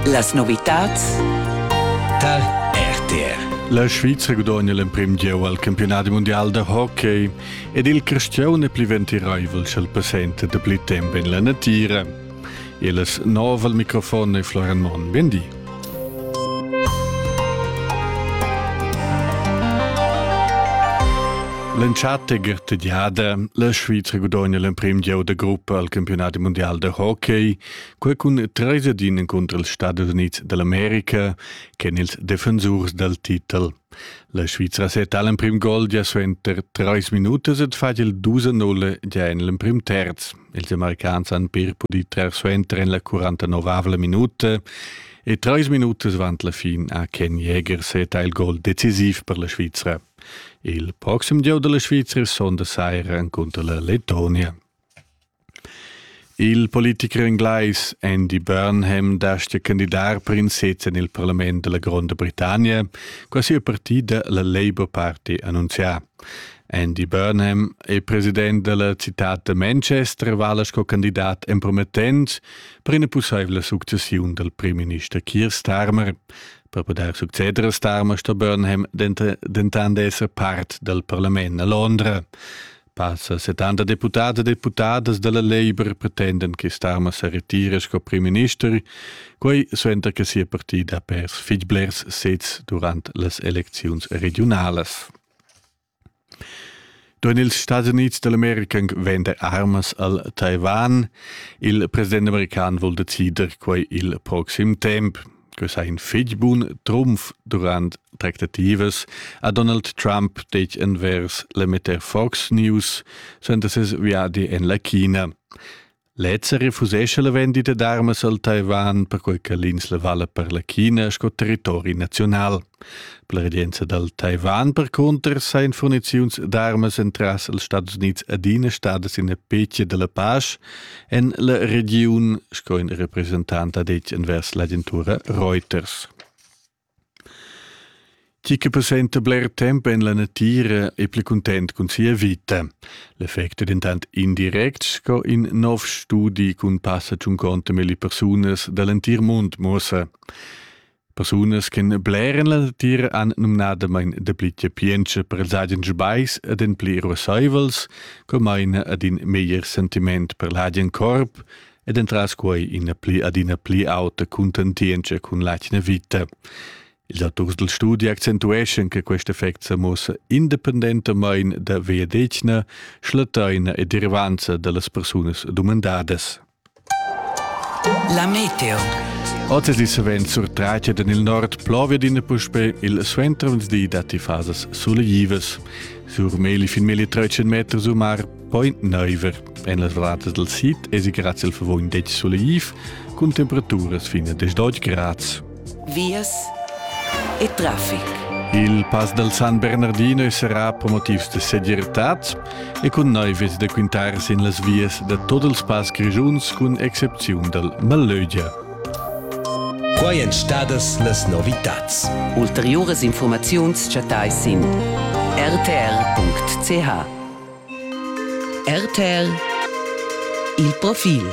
Las novitads tar RTR. La Svizra gudogna l'emprim gieu al campionat mundial da hockey ed il Cristian è pli ventiraivel ch'el passenta da pli temp en la natira. E las nov al microfon è Floran Monn. Bendi. L'entschatta tediada, la Svizra gudogna l'emprim gieu da gruppa al campionat mondial da hockey, quai cun treis ad in encunter els Stadis Unids dell'America che ils defensurs dal titel. La Svizra setta l'emprim gol gia suenter treis minutas ed fa il 2-0 gia en l'emprim terz. Ils Americans han pir pudì trer suenter en la 49 minuta e trais minutas avant la fin ha Ken Jäger seta il gol decisiv per la Svizra. Il proxim gieu della Svizra sonda saira encunter la Letonia. Il politiker inglais Andy Burnham dastia candidar per in sez en il parlament della Gronda Britannia, qua sia partida la Labour Party annunzià. Andy Burnham è president della città da Manchester e vala sco candidat empromettent per ina pussaivla successiun dal primminister Keir Starmer. Per poter succeder a Starmer sto Burnham dentant esser part dal parlament a Londra. Passa 70 deputati e deputadas della Labour pretenden che Starmer se retira sco primminister, quei suenter che sia partida ha pers fitblers sez durant las elecziuns regionalas. Durant ils Stati Unids d'America venda armas al Taiwan. Il president american vul decider quai il proxim temp. Questa è in fitg bun trumf durant tractativas a Donald Trump detg envers l'emetter Fox News senza ses viadi en la China. Lezza refusescha la vendita d'armas al Taiwan, perquai che l'insla vala per la China sco territori nazional. Per la regenza dal Taiwan, per cunter, sain furniziuns d'armas entras els Stats Unids adina stadas ina pecia della pace en la regiun, sco in representant ha detg envers l'agentura Reuters. Tgi che passenta bler temp en la natira è pli content cun sia vita. L'effect è dentant indirect sco in nov studi cun passa tschunconta milli persunas da l'entir mund muossa. Persunas che bler en la natira han numnadamain dapli chapientscha per els agen sbais ed en pli ruassaivels, co maina ad in meglier sentiment per l'agen corp, ed entras quei ina pli adina pli auta contentientscha cun l'atgna vita. Ils autors del studi accentueschan che quest effect sa mossa independentamain da veadetgna, schlattaina e derivanza dallas persunas dumandadas. La meteo. Oz è savens surtraccia en il nord plovia d'ina puspe il suentervenerdì datti fasas sulegivas. Sur meli fin meli trecen meters u mar Poi neiver en las vratas del sid es i grazie al favor in dec soleiv cun temperaturas fin a 10 grads. Vias e traffic. Il pass del San Bernardino sarà per motivs de segirtad e cun neives de quintar sin las vias de tot els pass grigiuns cun excepziun del Malögia. Quai èn stadas las novitats. Ulteriuras informaziuns chattai sin rtr.ch. RTL Il profil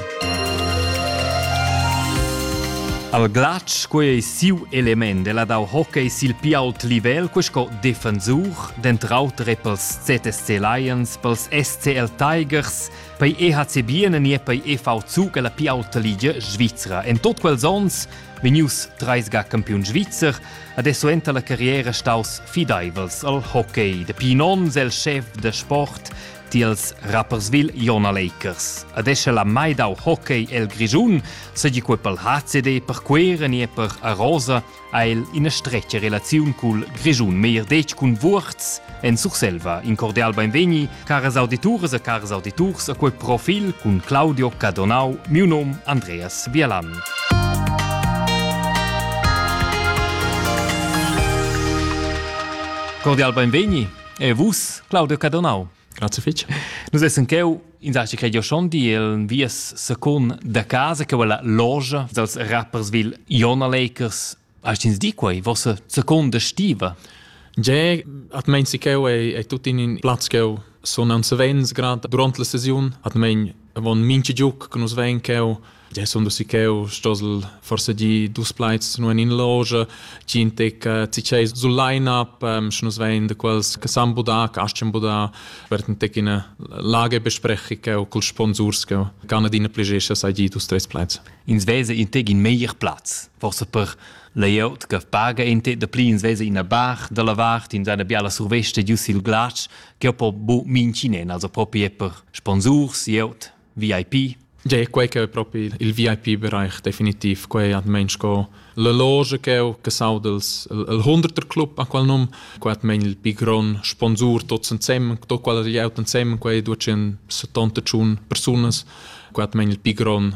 Al glatsch quei ei siu element ella dau hockey sil pi ault livel quei sco defensur, dentrauter e pels ZSC Lions, pels SCL Tigers, pei EHC Bienen e pei EV Zug alla pi aulta ligia svizra. En tot quels ons Vegnius treis ga campiun svizzer, adesso enta la carriera staus fideivels al hockey. Dapi in onn el chef da sport tiels Rapperswil Jona Lakers. Adesso la mai dau hockey el Grischun, segi quei pel HCD per Queren e per Arosa ha el ina stretga relaziun cul Grischun, meir detg cun Wurz en Surselva. In cordial beinvegni Caras audituras e caras auditurs, a quel profil cun Claudio Cadonau, miu nom Andreas Bielan. Cordial benvegni e vus, Claudio Cadonau. Grazie fitch. Nus essen cheu in saschi credio schon di el vies secund da casa che quella logia dels rappersville Jona Lakers Hast ins di quei vossa seconda stiva? Ge at mein si cheu ei, ei tut in in plaz cheu son an savens grad durant la sesiun at mein von minchi giuc che nus vein cheu Ge sono si cheu stosel forse di dus plaids nur in loge chi in tec ciceis sul line up sche nus vein de quels che san budar che aschen budar werden tec in lage besprechi cheu col sponsors cheu kann adina pligescha sai di dus tres plaids ins vesa in teg in meglier plaz forse per layout che paga in te da pli ins vesa ina bar dalla vart in seine biala surveste giu sil glatsch che po bu mincinen also proprio per sponsors layout VIP Ge, quei che è proprio il VIP-Bereich definitiv. Quei hat men sco la loge che ho casaud els il hunderter club a qual num, quei hat men il pigron sponsor tots insieme, tot qual er jaunt insieme, quei ducen 70 tschun persunas, quei hat men il pigron